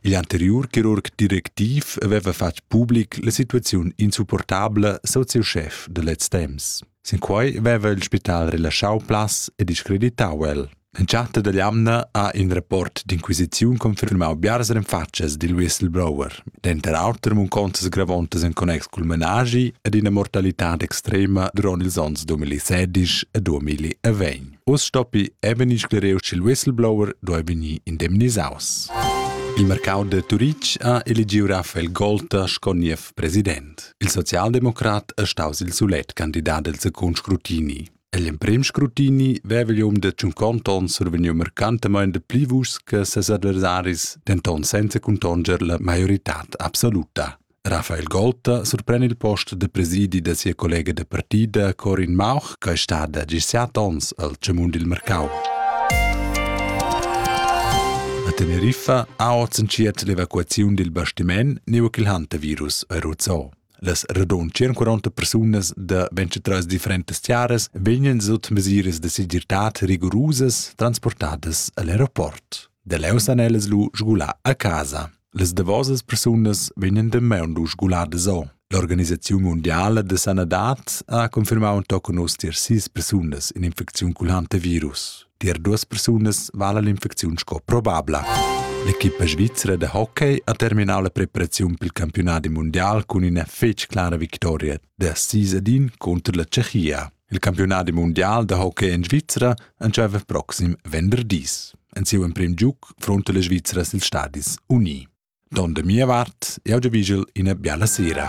Igl anteriur chirurg directiv haveva fatg public la situaziun insupportabla soziuschef da lez temps. Sin quei veva il spital relaschau plaz e discreditau el. Entschatta dalla jamna ha in rapport d'inquisiziun confirmau biars renfatschas dil whistleblower, denter auter munconzas gravontas en connex cul menaschi ed ina mortalitad extrema duront ils onns 2016 e 2020. Uss stoppi è vegnì sclereu ch'il whistleblower duai vegnir indemnisaus. Il mercau da Turitg ha eligiu Raphael Golter sco niev president. Il socialdemocrat è staus il sulet candidat del secund scrutini. L'emprim scrutini vevegl um de tschunconta onn survegniu mercantemein de pli vuschs che ses adversaris, denton senza contonger la maioritad absoluta. Rafael Golta surpren il post de presidi da sia collega de partida Corin Mauch, che è stada gis set onns al Cemun dil mercau. A Teneriffa ha oz entschiet l'evacuaziun dil bastiment neu ch'il hantavirus è ruzzò. Las radun 140 persunas da 23 differentes tiaras vegnan sut mesiras de segirtad rigorosas transportadas al aeroport. De leu san ellas lu sgular a casa. Las davosas persunas vegnan damaun lu sguladas o. L'organisaziun mundiala da sanadad ha confirmau tochen oz tier sis persunas in'infecziun culanta virus. Tier duas persunas vala l'infecziun sco probabla. L'equipa svizra de hockey ha terminau la preparaziun pel campionat mundial cun ina fetg clara victoria da 6 ad 1 contro la Tschechia. Il campiunadi mundial da hockey en Svizra entscheiva proxim venderdis. En siu emprim giug fronta le Svizra sil stadis uni. Don de mia vart, eu ge vigel ina biala sera.